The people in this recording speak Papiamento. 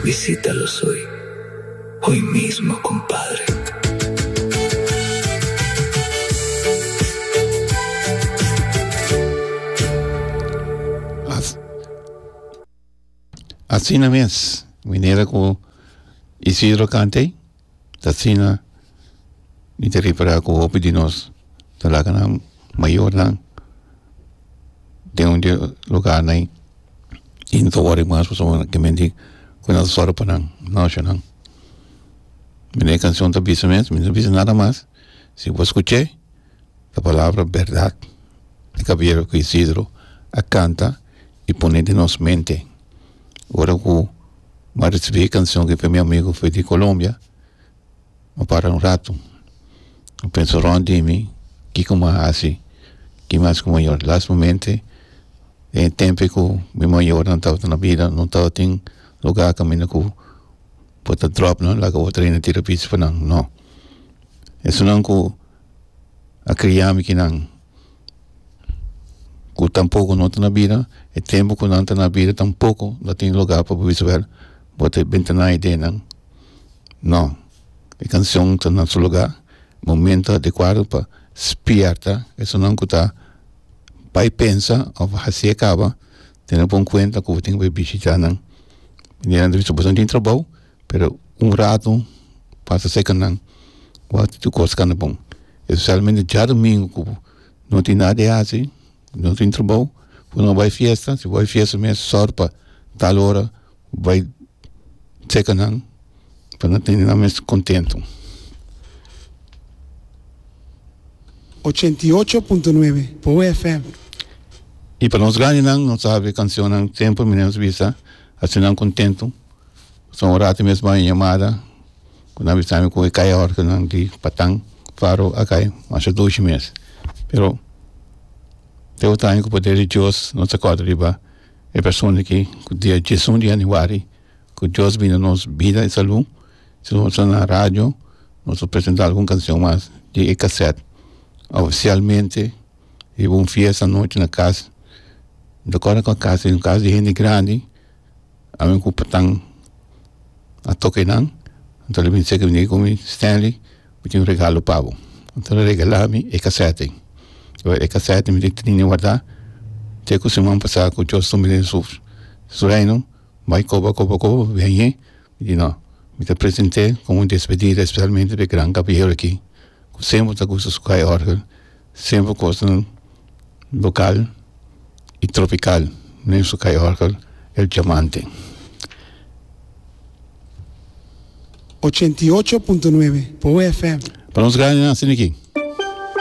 Visita los hoy, hoy mismo compadre. Asina mes, minera cu Isidro cant'ey. ta asina mi ta repará ku hopi di nos ta laga nan mayornan den un lugarnan i no ta wòri mas pasobra nan kimin di ku nan ta sòru pa nan no asha nan mene e kanshon ta bisa mes mi no bisa nada mas si bo skuch'e e palabra bèrdat di gabriel ku isidro a kanta. y pone den nos mente ora cu m'a ricibi e cancion cu fe mi amigo fe di Colombia m'a para un rato m'a pensa rond di mi kico m'a haci ki mas cu m'a yora lastimamente den e tempo cu mi mayornan tabata na bida no tabatin lugar caminda cu bo ta drop nan laga bo train nan tira pichi pa nan no esonan cu a cria mi kinan. ku tampoco no ta na bida e tempo ku nan ta na bida tampoco no tin lugar pa bo bisa wer bo ta benta na idee nan no e canción ta na su lugar momento adecuado pa spierta esanan ku ta bai pensa of hasi e kaba tene pon kuenta ku bo tin ke bai bishita nan bo tin trabou. Pero un rato pasa cerca nan wak tin tur cos cana bon especialmente djadomingo cu no tin nada di haci no tin trabao cu no bai fiesta si bo bai fiesta mes sor pa tal ora bai cerca nan pa no tene nan mes contento. Ochenta i ocho punto nuebe, Boe FM. Y pa nos grandenan nos sabe cancionnan siempre mira nos bisa hacinan contento. Pasá un rato mes baña yamada ku nan bisami ku e kai a hòrke nan di Patán Faro a kai masha dushi mes pero te otro aña ku poder di Dios nos ta kòrda riba e persona aki ku dia diezun di yanüari ku Dios bini nos bida i salu si nos tabata na radio nos a presentá algun kanshon mas di e kasèt ofisialmente riba un fiesta anochi na kas mi ta kòrda kua kas es un kas di hende grandi. Ami ku Patang a toka e nan anto lo bin segi bini ku mi, Stanley mi tin un regalo pa bo, anto lo regala mi e kasèt ei, oe e kasèt mi tin trinta wardá te ku siman pasá ku Dios tumbe den su reino bai koba koba koba biañe. Y no, mi ta present'é como un despedida especialmente p'e gran caballero aki cu semper ta gusta su kai orgel, semper koosnan local y tropical den su kai orgel El Diamante. Ochenta y ocho punto nueve, Boe FM. Pa nos graninan asina aki.